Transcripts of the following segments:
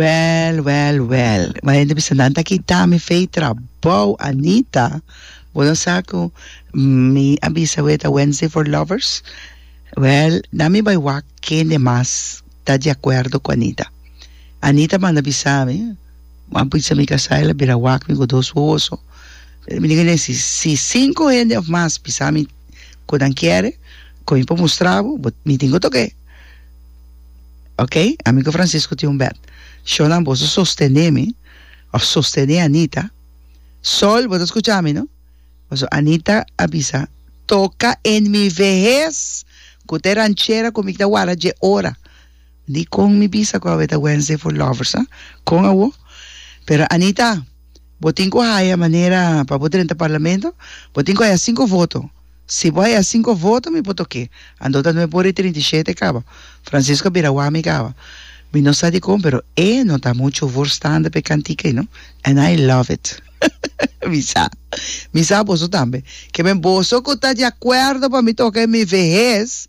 Well, well, well. Bo hende bisa nan ta kita mi fey trabou, Anita. Bo no sa ku mi a bisa awor e ta Wednesday for Lovers? Well, na mi bai wak kende mas ta di akuerdo ku Anita. Anita manda bisa mi, bo a bisa mi kasá, el a bira wak mi ku dos wowoso. Mi tin ke den si, si sinku hende òf mas bisa mi ku nan kiere, ku mi por mustra bo, bo, mi tin ku tok'é. Ok, ami cu Francisco tin un bed. Shonan, boso sostene mi, of sostene Anita. Sol, bo ta scucha mi, no? Paso Anita a bisa, toca en mi vehes cu ta e ranchera cu mi ta wara dje ora. Di con mi bisa cu awe ta Wednesday for lovers, ah? Con awo? Pero Anita. Bo tin cu haya manera pa bo drenta Parlamento? Bo tin cu haya cinco voto. Si bo haya cinco voto mi por toke. Ando ta nue bori trinta i shete caba. Francisco a bira wami caba. Mi no sa dicon pero e no ta mucho voorstander p'e cantica ei no. And I love it. Mi sa. Mi sa boso tambe. Ke men boso cu ta di acuerdo pa mi toca en mi vehez.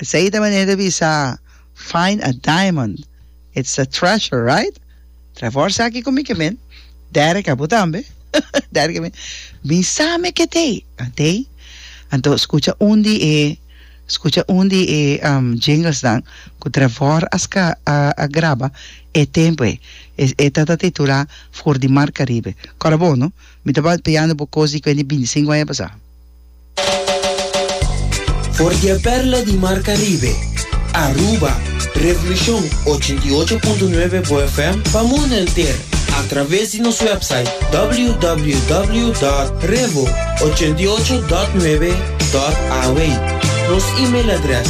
Esei ta manera di bisa, Find a diamond, it's a treasure, right? Trae for sa aki cu mi, Kemen. Derek, a bo tambe. Derek, a mi. Mi sa me ke t'e. A t'e. Anto, scucha un di e, scucha un di e jinglesnan cu Trevor a sca, a, a graba e tempo ei. E, e ta, ta titula For di Mar Caribe. Cora bo, no? Mi tabata piando bo cos di cuenta di binti cinco aña pasa. For di e perla di Mar Caribe, Aruba, Revolucion ochenta i ocho punto nuebe bo FM pa mundo enter a traves di nos website www.revo88.9.aw, nos email adres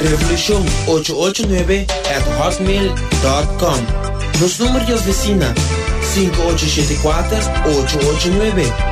revolucion ocho ocho nuebe at hotmail dot com, nos number di oficina sinku ocho shete kuater ocho ocho nuebe.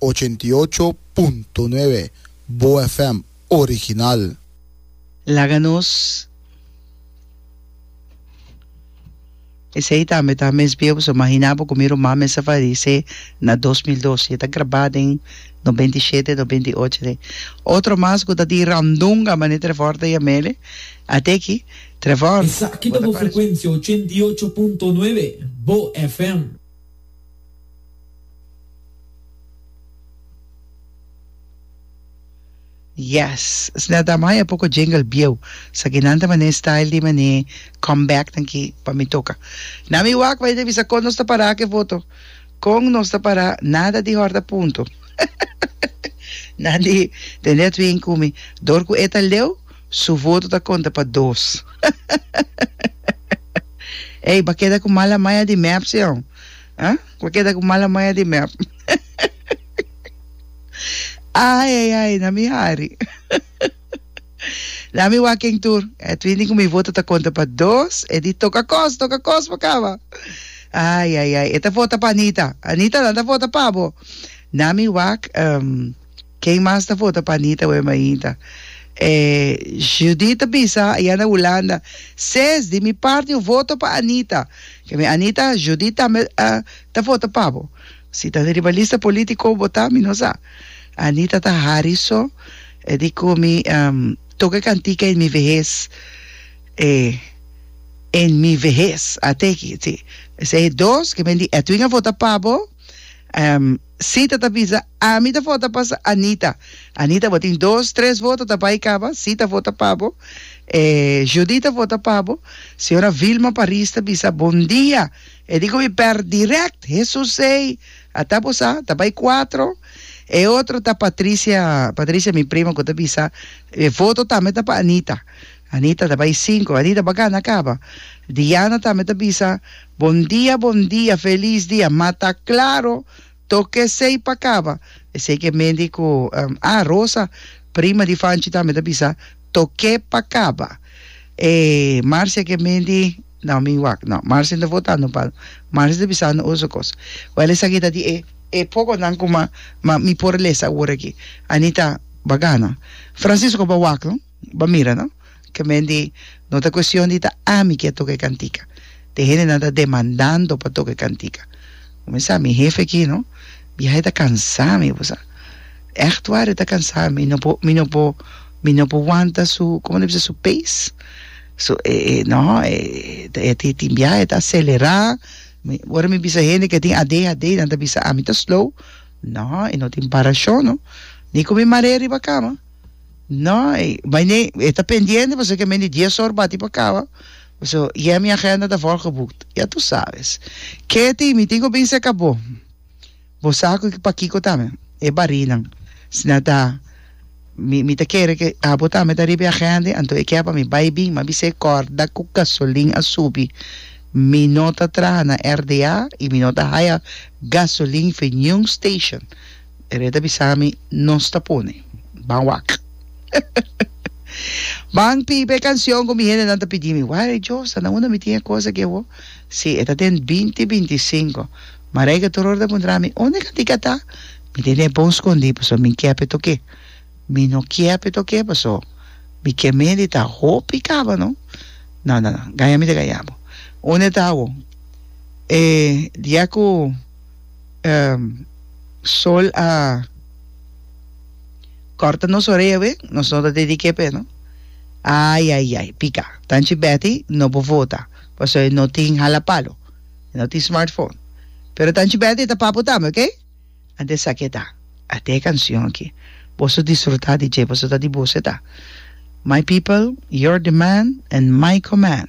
ochenta i ocho punto nuebe Boa FM original. Laga nos Esei tambe ta mes bia boso mahina bo ku mi rumá mes a fadisé na dos mil dos i e ta grabá den nobenta i shete nobenta i ocho de otro mas ku ta di randunga mané Trevor ta yam'ele ate aki Trevor Esaki bo ta ta koreson. frekuensia ochenta i ocho punto nuebe Boa FM. Yes esnan ta maya poko jingle bieu saki nan ta mané style di mané come back nan ki pa mi toka na mi wak bay ta bisa kon nos ta para ke foto kon nos ta para nada di horta punto nan di tende atwin kumi dor ku e ta leu Su voto ta conta pa dos. Ey ba keda cu mala maya di mep si ho? Ha? Ba keda cu mala maya di mep. Ay ay ay na mi hari. Na mi waken tur. Edwin di cu mi voto ta conta pa dos. E di toca cos, toca cos pa caba. Ay ay ay e ta vota pa Anita. Anita nan ta vota pabo. Na mi wak. Ken mas ta vota pa Anita Wem ainda? E Judith ta bisa ayan na Hulanda, Ses, di mi parti un voto pa Anita. Ke mi Anita, Judith tambe ta vota pa bo. Si ta di riba lista politico bo bota, mi no sa. Anita ta hari so, e di cu mi toca e cantica en mi vejez, e en mi vejez, ateki, si. Esey dos, ke men di Edwin a vota pa bo. Sita ta bisa, Ami ta vota pa sa Anita. Anita, bo tin dos, tres voto ta bai caba. Sita vota pa bo. E Judy ta vota pa bo. Señora Vilma Paris ta bisa, Bon dia. E di komi per direct, Hesus ei, ata bo sa, ta bai cuatro. E otro ta Patricia, Patricia mi prima cu ta bisa, E voto tambe ta pa Anita. Anita ta bai cinco. Anita, bo a gana caba. Diana tambe ta bisa. Bon dia bon dia felis dia ma ta claro toc esey pa caba esey ke medi cu ah Rosa prima di Fanchi tambe ta bisa toque pa caba e Marcia ke medi no mi wak no Marcia no ta votando pa Marcia ta bisando otro cos well esaki ta di e poconan cu ma mi por lesa awor aki Anita ba gana Francisco ba wak no. Bo a mira, no? Ke men di, No ta kuestion di ta ami ke a toka e kantika. Tin hendenan ta demandando pa toka e kantika. Kuminsá, mi hefe aki, no? Biaha e ta kansá mi, bo sa. Ègt waar, e ta kansá mi. Mi no por, mi no por, mi no por wanta su, komo ta bisa? Su pace. So, e, e, no, e, e tin, tin biaha e ta aselerá. Mi, ora mi bisa hende ke tin adhd, nan ta bisa ami ta slow. No, e no tin parashon, no? Ni ku mi mar'é riba kama. No, bai nei, e ta pendiente pasobra ke men di dies or bati pa kaba, so yeah mi agenda ta volgeboekt, ya tu sabes. Ketty, mi tin ku bin seka bo, bo sa ku pa kiko ta mi, e barinan, si nan ta, mi mi ta kere ke abo tambe ta riba e agenda, anto e ke pa mi bai bin, mi a bisa e kòrda ku gasolin a subi, mi no ta traha na RDA i mi no ta haya gasolin for niun station. Tere ta bisa mi nos ta pone ban wak ban pipa e cancion cu mi hendenan ta pidi mi why Josa na unda mi tin e cosa aki awo si e ta den binti binti sinku Marijke tur ora ta puntra mi unda e cantica ta mi tin e bon scondi pasobra mi kier pe toke mi no kier pe toke paso mi kier mi hende ta hopi caba no no no no gaya mi ta gaya bo unda e ta awo e dia cu. Um sol a corta nos orea awe, nos no ta te di kepe no. Ai ai ai, pica. Tanchi Betty no por vota, paso e no tin hala palo, e no tin smartphone. Pero tanchi Betty ta papo tambe, ok? Anto esa ke ta. Ate e cancion aki. Boso disfruta di dje, paso ta di boso e ta. My people, your demand and my command.